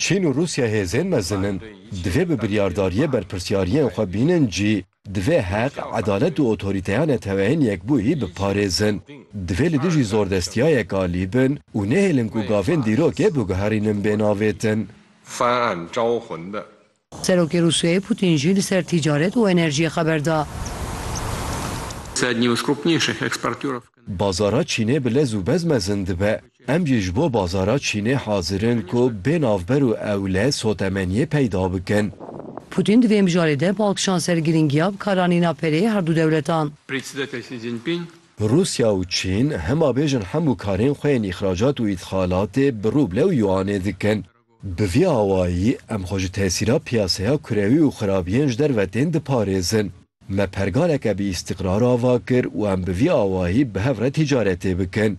Çîn û Rûsya hêzên mezin in, divê bi biryardariyê berpirsyariyên xwe bînin cî, divê heq, edalet û otorîteya Neteweyên Yekbûyî biparêzin. Divê li dijî zordestiyayek alî bin û nehêlin ku gavên dîrokê biguherînin bênavêtin. Serokê Rûsyayê Pûtîn jî li ser tîcaret û enerjiyê xeber da. Bazara Çînê bi lez û bez mezin dibe. Em jî ji bo bazara Çînê hazir in ku bê navber û ew lez sotemeniyê peyda bikin. Pûtîn di vê mijarê de bal kişand ser girîngiya bikaranîna pereyê her du dewletan. Rûsya û Çîn hema bêjin hemû karên xwe yên îxracat û îdxalatê bi rûble û yuanê dikin. Bi vî awayî em xwe ji tesîra piyaseya kurewî û xirabiyên ji derve tên diparêzin. Me pergaleke bi îstîqrar ava kir û em bi vî awayî bi hev re tîcaretê bikin.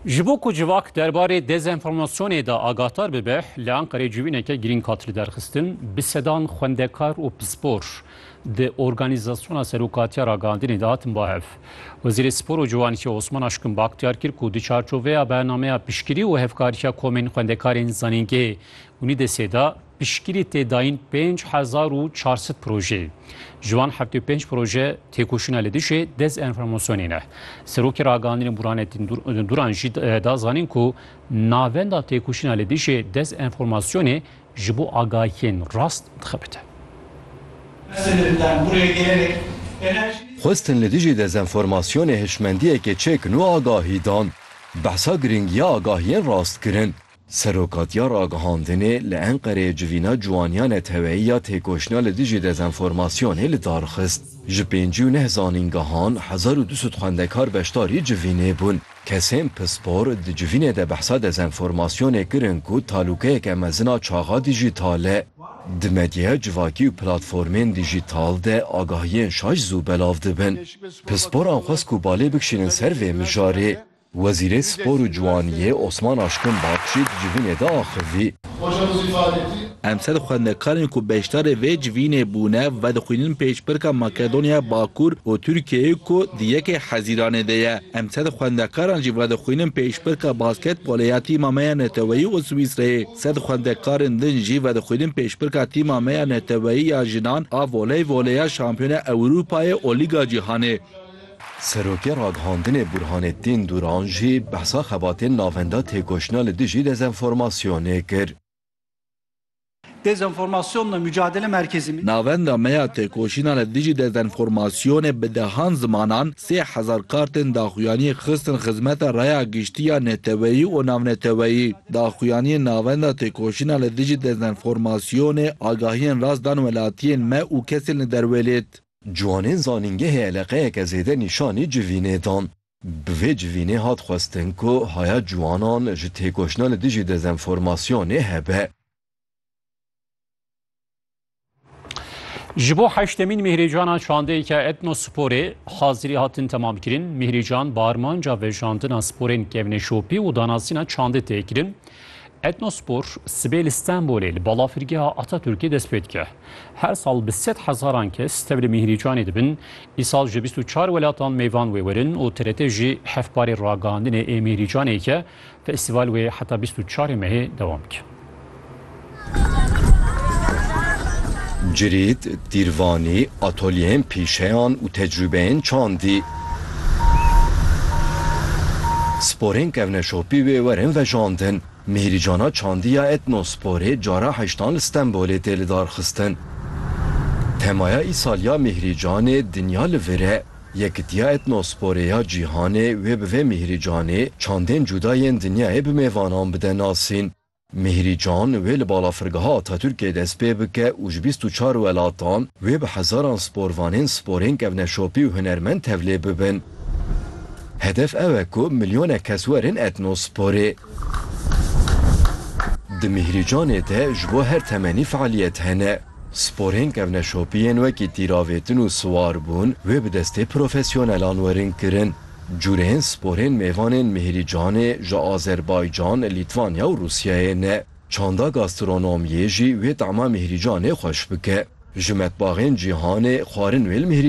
Ji bo ku civak derbarê dezenformasyonê de agahdar bibe, li Enqerê civîneke girîng hat lidarxistin, bi sedan xwendekar û pispor di organîzasyona Serokatiya Ragihandinê de hatin bahev. Wezîrê Spor û Ciwanî Osman Aşkun Baktyar kir ku di çarçoveya bernameya piştgirî û hevkariya komên xwendekarên zanîngehê UNIDES'ê de piştgirî tê dayîn pênc hezar û çar sed projeyê. Ji wan heftê û pênc proje têkoşîna li dijî dezenformasyonê ne. Serokê Ragihandinên Burhanettin Duran jî da zanîn ku navenda têkoşîna li dijî dezenformasyonê ji bo agahiyên rast dixebite. Xwestin li dijî dezenformasyonê hişmendiyekê çêkin û agahî dan. Behsa girîngiya agahiyên rast kirin. Serokatîya Ragihandinê li Enqereyê civîna ciwaniya neteweyî ya têkoşîna li dijî dezenformasyonê li dar xist. Ji pêncî û neh zanîngehan hezar û du sed xwendekar beşdarî civînê bûn. Kesên pispor di civînê de behsa dezenformasyonê kirin ku talûkeyeke mezin a çaxa dîjîtal e. Di medyaya civakî û platformên dîjîtal de agahiyên şaş zû belav dibin. Pisporan xwest ku balê bikişînin ser vê mijarê. Wezîrê Spor û Ciwaniyê Osman Aşkın Bab jî di civînê de axivî. Emsal xwendekarên ku beşdarê vê civînê bûne vedixwînin pêşbirka Makedonyaya Bakur û Tirkiyeyê ku di yekê Hezîranê de ye. Emsal xwendekaran jî vedixwînin pêşbirka basketbolê ya tîma me ya neteweyî û Swîsreyê. Sed xwendekarên din jî vedixwînin pêşbirka tîma me ya neteweyî ya jinan a voleyvolê ya Şampiyona Ewrûpayê û Lîga Cîhanê. Serokê ragihandinê Burhanettin Duran jî behsa xebatên navenda têkoşîna li dijî dezenformasyonê kir. Dezenformasyonla Mucadele Merkezi. Navenda me ya têkoşîna li dijî dezenformasyonê bi dehan zimanan sê hezar kartên daxuyaniyê xistin xizmeta raya giştî ya neteweyî û navneteweyî. Daxuyaniyên Navenda Têkoşîna li Dijî Dezenformasyonê agahiyên rast dan welatiyên me û kesên li derwêlêt. Ciwanên zanîngehê eleqeyeke zêde nîşanî civînê dan. Bi vê civînê hat xwestin ku haya ciwanan ji têkoşina li dijî dezenformasyonê hebe. Ji bo heştemîn Mîhrîcana çandeyeke etnosporê hazirî hatin temamkirin. Mîhrîcan bi armanca vejandina sporên kevneşopî û danasîna çandê tê kirin. Etnospor sibê li Stenbolê li balafirgeha Ataturkê dest pê dike. Her sal bi sed hezaran kes tevli Mîhrîcanê dibin, îsal ji bîst û çar welatan mêvan wê werin û TRT jî hevparê ragihandinê ê Mîhrîcanê ke festîval wê heta bîst û çar ê mehê dewam dike. Cirîd, tîrvanî, atolyeyên pîşeyan û tecrûbeyên çandî. Sporên kevneşopî wê werin vejandin. Mihîrcana çandî ya Etnosporê cara heştan li Stenbolê tê lidarxistin. Temaya îsal ya Mihîrcanê Dinya li vir e. Yekitiya Etnosporê ya Cîhanê wê bi vê Mihîrcanê çandên cuda yên dinyayê bi mêvanan bide nasîn. Mihîrî Can wê li balafirgeha Atatürkê dest pê bike û ji bîst û çar welatan wê bi hezaran sporvanên sporên kevneşopî û hunermend tevlê bibin. Hedef ew e ku milyonek kes werin etnosporê. Di Mihîrî Canê de ji bo her temenî fealiyet hene. Sporên kevneşopî yên wekî tîravêtin û siwarbûn wê bi destê profesyonelan werin kirin. Curên sporên mêvanên Mihiricanê ji Azerbaycan, Lîtvanya û Rûsyayê ne. Çanda gastronomiyê jî wê tama Mihiricanê xweş bike. Ji metbaxên cîhanê xwarin wê li Mihiricanê.